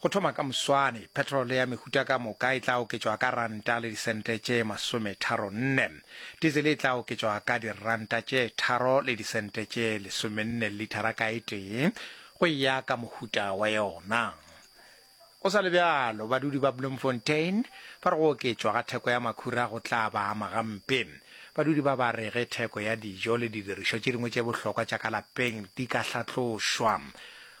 Go thoma ka moswane, petrole ya mehuta ka moka e tla oketšwa ka ranta le disente tše masometharo-nne. Diesel e tla oketšwa ka diranta tše tharo le disente tše lesomenne lithara ka e tee, go e ya ka mohuta wa yona. Go sa le bjalo, badudi ba Bloemfontein ba re go oketšwa ga theko ya makhura go tla ba ama gampe. Badudi ba ba re ge theko ya dijo le didirišwa tše dingwe tše bohlokwa tša ka lapeng di ka hlatlošwa,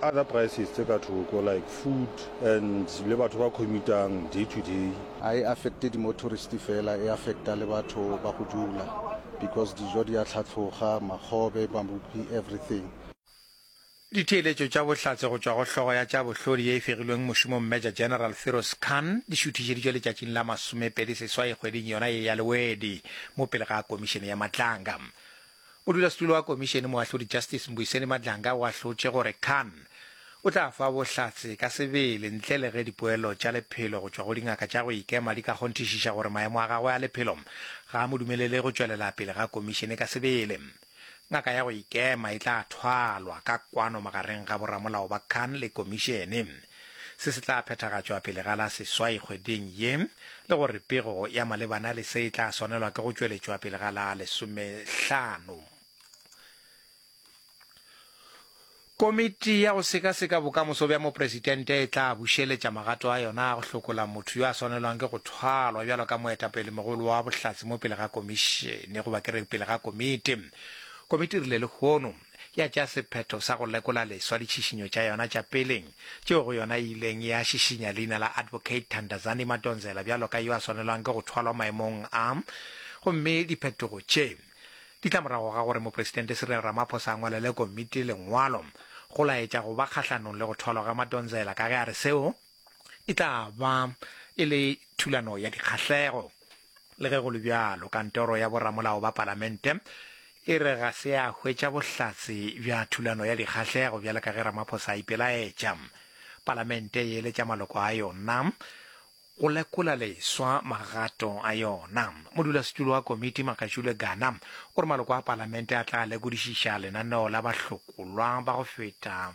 other prices tse ka thoko like food and le batho ba commutang day to day. Ga e affecte di motorist fela, e affecta le batho ba go dula because dijo di a tlhatloga, makgobe, mabupi, everything. Ditheeletšo tša bohlatse go tšwa go hlogo ya tša bohlodi ye e fegilweng mošomong Major General Firoz Khan di šuthišeditšwe letšatšing la masomepedi seswai kgweding yona ye ya Lewedi mo pele ga Komišene ya Matlanga. Modulasetulo wa Komišene Moahlodi Justice Mbuyiseni Madlanga o ahlotše gore Khan o tla fa bohlatse ka sebele ntle le ge dipoelo tša lephelo go tšwa go dingaka tša go ikema di ka kgonthišiša gore maemo a gagwe a lephelo ga a mo dumelele go tšwelela pele ga Komišene ka sebele. Ngaka ya go ikema e tla thwalwa ka kwano magareng ga boramolao ba Khan le Komišene. se se tla phethagatšwa pele ga la seswai kgweding ye, le gore pego ya malebana le se e tla swanelwa ke go tšweletšwa pele ga la lesomehlano. Komiti ya go sekaseka bokamoso bja mopresidente e tla bušeletša magato a yona a go hlokola motho yo a swanelwang ke go thwalwa bjalo ka moetapelemogolo wa bohlatse mo pele ga komišene, goba ke re pele ga komiti. Komiti e rile lehono. ya tšea sephetho sa go lekola leswa ditšhišinyo tša yona tša pele tšeo go yona e ileng ya šišinya leina la Advocate Thandazani Madonsela bjalo ka yo a swanelwang ke go thwalwa maemong a gomme diphetogo tše di tla morago ga gore Mopresidente Cyril Ramaphosa a ngwalele komiti lengwalo go laetša go ba kgahlanong le go thwalwa ga Madonsela ka ge a re seo E tla ba e le thulano ya dikgahlego. Le ge go le bjalo, kantoro ya boramolao ba palamente e re ga se a hwetša bohlatse bja thulano ya dikgahlego bjale ka ge Ramaphosa a ipelaetša. Palamente e eletša maloko a yona go lekola leswa magato a yona. Modulasetulo wa komiti Makashule Gana o re maloko a palamente a tla lekodišiša lenaneo la bahlokolwa ba go feta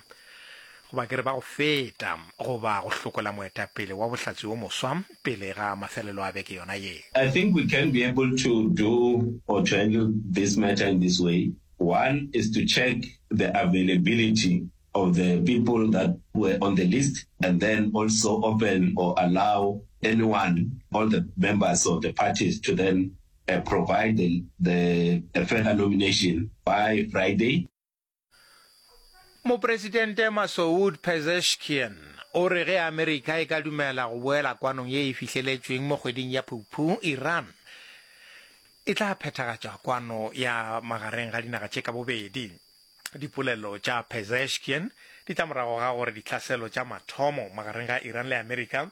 Goba ke re ba go feta, goba go hlokola moetapele wa bohlatse yo moswa pele ga mafelelo a beke yona ye. I think we can be able to do or to handle this matter in this way, one is to check the availability of the people that were on the list and then also open or allow anyone, all the members of the parties to then provide the further nomination by Friday. Mopresidente Masoud Pezeshkian o re ge Amerika e ka dumela go boela kwanong ye e fihleletšweng mo kgweding ya Phuphu, Iran e tla phethagatša kwano ya magareng ga dinaga tše ka bobedi. Dipolelo tša Pezeshkian di tla morago ga gore ditlhaselo tša mathomo magareng ga Iran le Amerika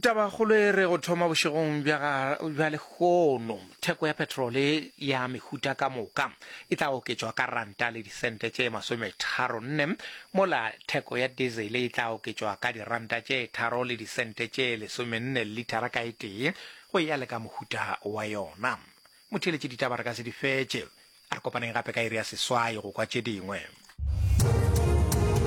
Tabakgolo e re go thoma bošegong bja lehono theko ya petrole ya mehuta ka moka e tla oketšwa ka ranta le disente tše masometharo nne mola theko ya diesel e tla oketšwa ka diranta tše tharo le disente tše lesomenne lithara ka e tee go ya le ka mohuta wa yona motheletše ditaba re ka se di fetše a re kopaneng gape ka iri ya seswai go kwa tše dingwe